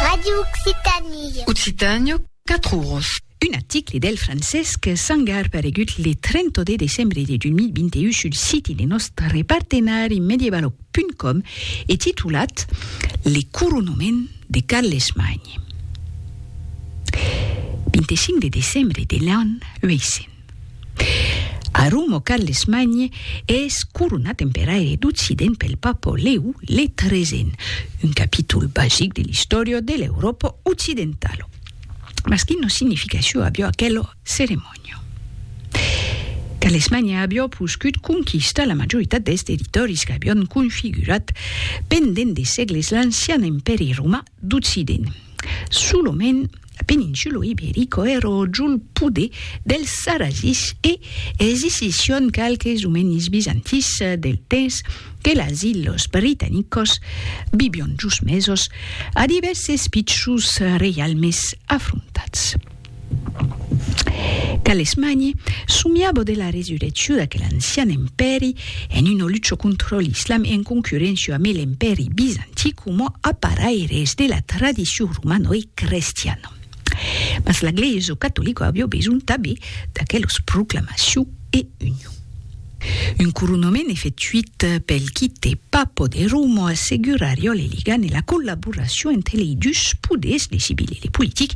Radio Occitanie. Occitània, 4 oros. Un article del Francesc Sangar paregut le 30 de decembre de 2021 sul siti de nòstre partenari medievalog.com e titulat Le coronament de Carles Magne. 25 de decembre de l'an 800. A Roma Carlesmagne es coronat emperaire d'Occident pel papa Lèu le tresèn, un capítol basic de l'istòria de l'Euròpa occidentala. Mas quina significacion aviá aquela ceremònia? Carlesmagne aviá poscut conquistar la majoritat dels territòris qu'avián configurat pendent de sègles l'ancian empèri romà d'Occident. Solomèn peninsulo iberico ero jol pode dels Sarrasis e existission qualques omenis bizantins del temps que las illos britanicos vivion jos mesos a divèrses pichons reialmes afrontats. Calesmanie, somiabo de la resurrecciu d'aquel ancian empèri en una lucha contra l'islam en concurréncia amé l'empèri bizanti coma aparaires de la tradicion romano e crestiana. Mas la Glèisa catolica avió besonh tabé d'aquelos proclamaciu e union. Un couronament efectuit pel quite Papo de Rumo assegurar jo le ligan e la collaboracion entre lei dus poders, le civil e le politic,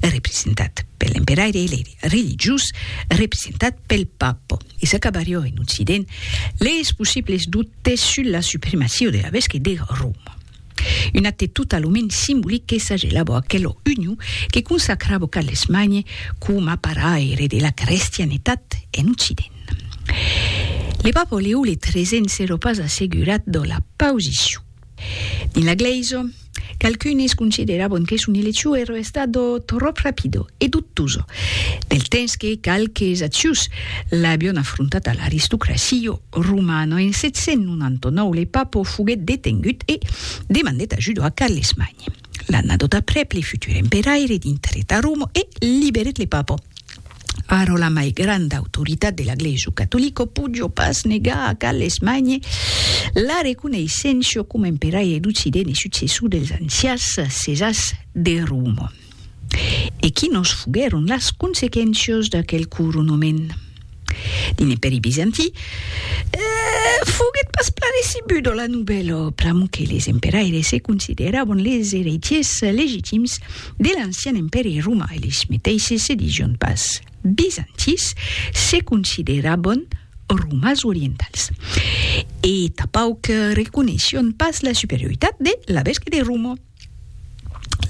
representat per l'emperaire e le religiós, representat pel Papo. E s'acabar jo en Occident les possibles dubtes sus la supremacia de la Vesquet de Roma. Un acte totalament simbolic que s'agelabo aquela union que consacrabo Carlesmagne coma paraire de la crestianetat en Occident. Le Papa Leo le XIII s'èra pas assegurat de la posicion. Dins la Glèisa, qualqu'unes consideravan que son eleccion èra estada tròp rapida e dubtosa, del temps que qualques acius l'avián afrontata l'aristocracia Roman. En 799 le Papo foguèt detengut e demandèt ajuda a Carlesmagn. L'annadot aprèp le futur emperaire dintrèt a Roma e liberèt le Papo. Ara la mai granda autoritat de la glèisa catolica podió pas negar a Carlesmagn la reconeissença coma emperaire d'Occident e successor dels ancians Cesars de Roma. E quinos foguèron las consequéncias d'aquel coronament? Dins l'Impèri Bizantí, foguèt pas plan recebuda la novèla, pr'amor que les emperaires se consideràvan les eretiers legitims de l'ancian Impèri Romà, eles meteisses se disián pas bizantins, se consideràvan romans orientals e tapauc reconeisián pas la superioritat de la Bèsca de Roma.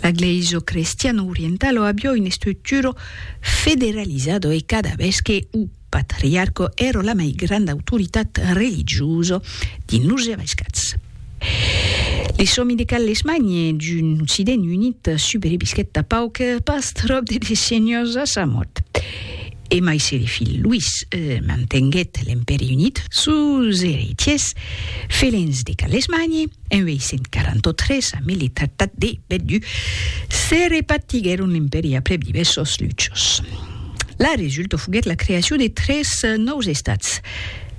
La glèisa crestiana orientala avió una estructura federalizada e cada ves que o patriarca èra la mai granda autoritat religiosa dins los Evaiscats. Li sòmi de Carles Magne d'un Occident unit subrevisquèt a pauc pas tròp de decenias a sa mòrt. E mai se li filh Louis mantenguèt l'Empèri Unit, sos eretiers, felins de Carles Magne, En 843, a mili tractat de Bellevue, se repartiguèron l'Impèri aprèp divèrsos luchos. La resulta foguèt la creacion de tres nòus estats,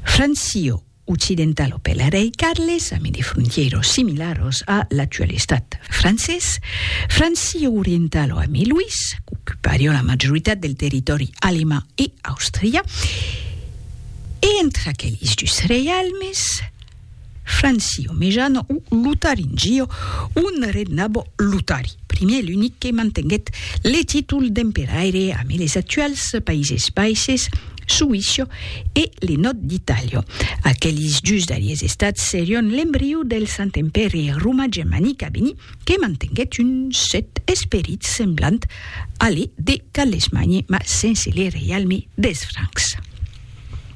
Francio, occidentalo per la rei Carles, ami de frontièros similaros a l'actual estat francés, Francio orientalo ami Louis, qu'ocuparion la majoritat del territòri alemand e Àustria, e entre aquelis dus reialmes, Francio Mejano o Lutaringio, un rednabo Lutari, primier e l'unic que mantenguèt le títol d'emperaire amé les actuals Païses Baisses, Suïsio e le nòd d'Itàlia. Aquelis dus darriers estats serion l'embriu del Sant Empèri Roma-Germanic a venir que mantenguèt un cèrt esperit semblant a le de Carlesmagne mas sense le reialme des Francs.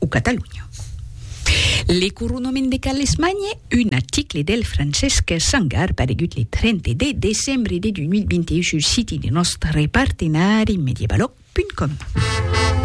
o Catalonha. Le coronament de Carlesmanhe, un article del Francesc Sangar paregut le 30 de decembre de 2021 sul siti de nòstre partenari medievalog.com.